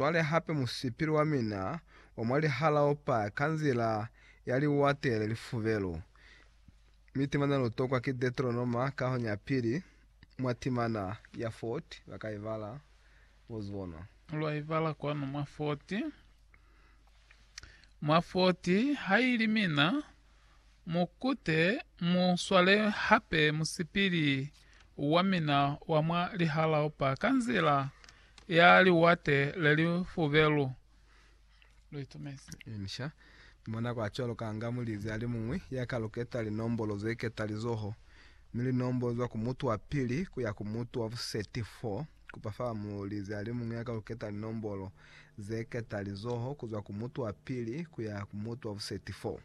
Cwale hape musipili wa mina wa mwa lihala o pa ka nzila ya liwate le lifubelu, mi timana lu tokwa ki Deteronoma kahoni ya pili, mwa timana ya Fort, ba ka ibala, bo zibona. Lwa ibala kwanu mwa Fort, mwa Fort, haili mina. Mu kute mu swale hape musipili wa mina wa mwa lihalaopa ka nzila ya liwate le li fubelu. Lu itumezi. Inca, mwa nako a cwaluka nga mulizi a li muñwi ya ka luketa linombolo ze ketalizoho, mi linombolo zwa ku mutu wa pili ku ya ku mutu wa buseti 4, Kupa fa muulizi alimuñwi ya ka ku keta linombolo ze keta lizoho ku zwa ku mutu wa pili ku ya ku mutu wa buseti 4.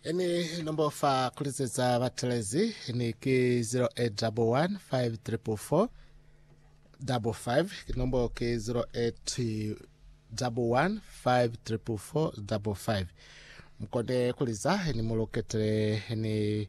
Ini nombo fa ku lizetsa batelezi ni ki 0811 544555. Ki nombo ki 0811 544555. Mu kone ku liza ini mu luketele ni.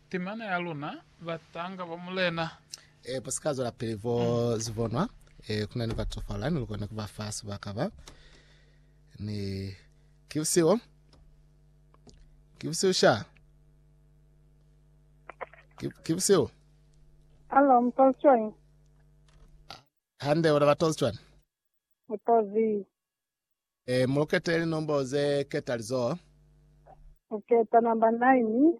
Temana ya luna, batanga ba Mulena. E, bo si ka zwelapili bo zibonwa, e, ku na ni batofala, ni lukoni ku ba fa sibaka ba. Ni ki busihu, ki busihu sha, ki, ki busihu. Alo, mtozi cwani? Hande, una batozi cwani? Mtozi, E, mulukete linombo ze ketalizoho. uketa namba 9,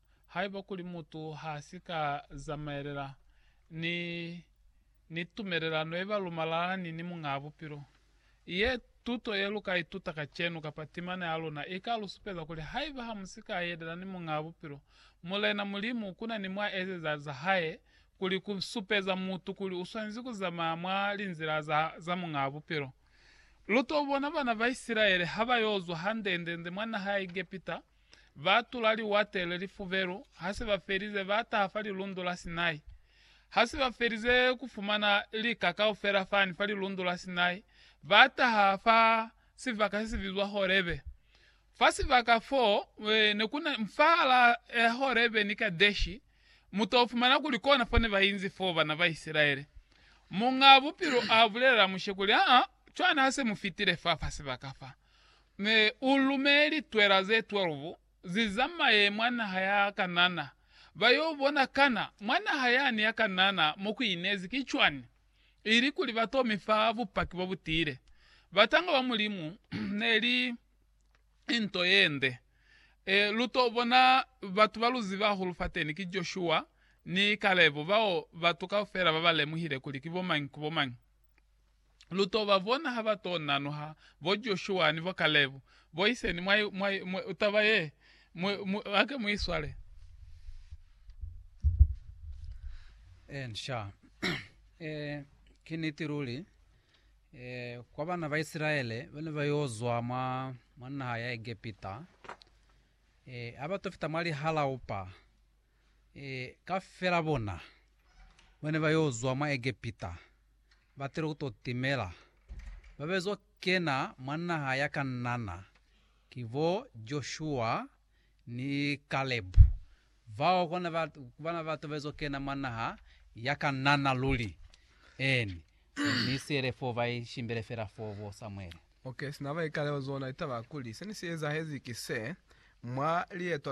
Haiba kuli mutu ha si ka zamaelela ni, ni tumelelano ye ba lu malalani ni Muñaa Bupilo, ye tuto ye lu ka ituta kacenu kapa timana ya luna i ka lu supeza kuli haiba ha mu si ka yelela ni Muñaa Bupilo, Mulena Mulimu ku na ni mwa ezeza za Hae kuli ku supeza mutu kuli u swanezi ku zamaya mwa linzila za, za Muñaa Bupilo. Lu to bona bana ba Isilaele ha ba yo zwa hande-nde-nde mwa naha ya Egepita. Ba tula liwate le lifubelu, ha se ba felize ba taha fa Lilundu la Sinai. Ha se ba felize ku fumana lika kaufela fani fa Lilundu la Sinai, ba taha fa sibaka se si bizwa Horebe. Fa sibaka fo, ne ku na, fahal'a Horebe ni Kadeshi, mu t'o fumana kuli kona fo ne ba inzi fo bana ba Isilaele. Muñ'a Bupilo a bulelela Mushe kuli, Aa, cwani ha se mu fitile fa, fa sibaka fa. Ne u lumeli twela ze 12 zi zamaye mwa naha ya Kanana, ba yo bona kana mwa naha yani ya Kanana mo ku inezi ki cwani, ili kuli ba to mi fa bupaki bo bu tiile. Batanga ba Mulimu ne li nto ye nde. E, lu to bona batu ba lu ziba hahulu fateni, ki Joshua ni Kalebo, bao batu kaufela ba ba lemuhile kuli ki bomañi ku bomañi. lu to ba bona ha ba to nanuha bo Joshua ni bo Kalebu, bo iseni mwa, mwa, mwa taba ye, mu, mu, ake mu iswale. En sha. e, ki niti luli. E, kwa bana ba Isilaele ba ne ba yo zwa mwa, mwa naha ya Egepita, e, ha ba to fita mwa lihalaupa, Ee, kafela bona bane ba yo zwa mwa Egepita ba tile ku to timela, ba be zo kena mwa naha ya Kanana, ki bo Joshua ni Kalebu. Bao kona ba, ku bana batu ba zo kena mwa naha ya Kanana luli. Eeni, ni siele foo, ba i shimbele fela foo, bo Samuele. Okay, sina ba ikaleo zona litaba kuli seni si ezahezi ki se, mwa lieto